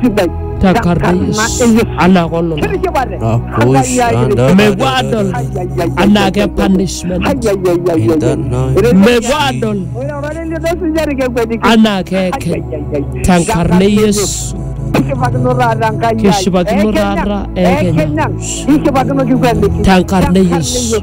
sidai. Takarnais. Anaa kololo. Mepuo adol anaa ke punishment. Mepuo adol anaa keekeny. Tenkarna e Yesu. Kishipakino taata Enkai ai. Kishipakino taata eekeny. Tenkarna e Yesu.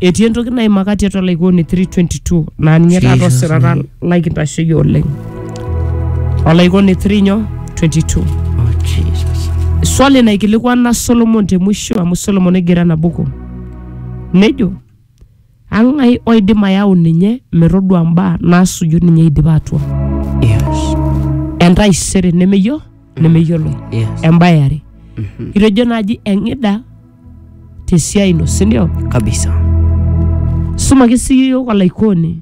Etii entoki naimaka tiatua Laikooni 3:22 naa ninye taata Jesus. osirata lai kintasheyie oleng. Olaikoni 3 nyoo 22. Oh, Jesus. Swali naikilikuana Solomon te mwisho amu Solomon negira ena buku. Nejo, ang'ai oidim ayau ninye metodua mbaa naasuju ninye eidipa atua. Yes. Entaisere nemeyio nemeyiolo. Yes. Embae are. Itejo naaji eng'ida te siai ino si ndio kabisa sumaki sii yiok olaikoni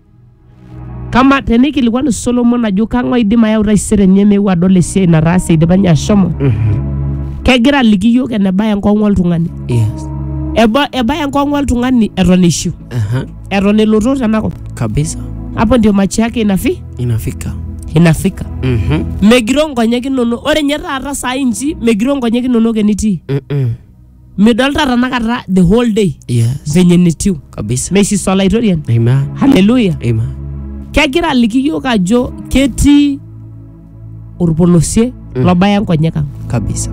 kama tenikilikuanu solomon ajo kang'ae idim ayau taisere enye meeu adol esiai nataase idipa ninye ashomo kegira aliki yiok enebaya enkong'u oltung'ani yes Eba- ebaya enkong'u oltung'ani eton ishu Aha. eton elotu tenakop kabisa hapo ndio machi yake inafi inafika inafika Mhm. megiro nkonyek inonok ore nye taata saa inchi megiro nkonyek inonok enitii Mm-mm. midolta tanakata the whole day yes venye netiu kabisa meisisa olaitoriani amen haleluya amen kegira aliki yiok ajo ketii orpolosie Mm. lobaya nkonyek ang kabisa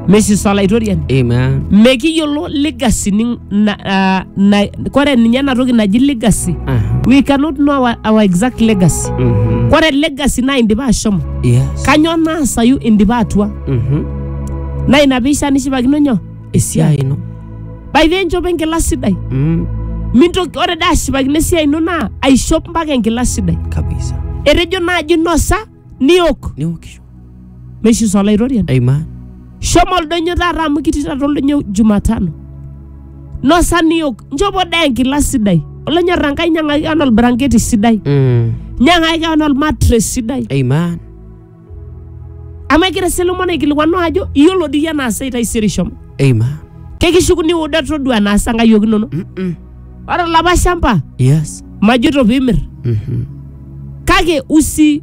mesis olaitoriani amen mekiyiolo legacy ni, na, ah, na, kore ninye ena toki naji legacy Aha. we cannot know our, our exact legacy Mhm. kore legacy naa indipa ashomo yes kanyoo naasayu indipa atua Mhm. naa ina piisha nishipakino nyoo esiai ino by the way, nchopo enkila sidai mm, mintoki ore dai ashipakino esiai ino naa aishop mpaka enkila sidai kabisa etejo naaji nosa niok niokisho meishiso olaitoriani aima shomo oldonyo taata amu kitii taata oldonyo jumatano nosa niok nchopo dai enkila sidai olonyorra nkai nyang'aki ana olbranketi sidai mm, nyang'aki ana olmatres sidai aima amu egira Solomon aikilikuanu ajo iyiolo dii iyie enaasayu taisere ishomo Eima. kekishuku niuda todua enaasa nkayiok inono Mm-mm. ore olapa shamba Yes. majoito piimir Mhm. kake usi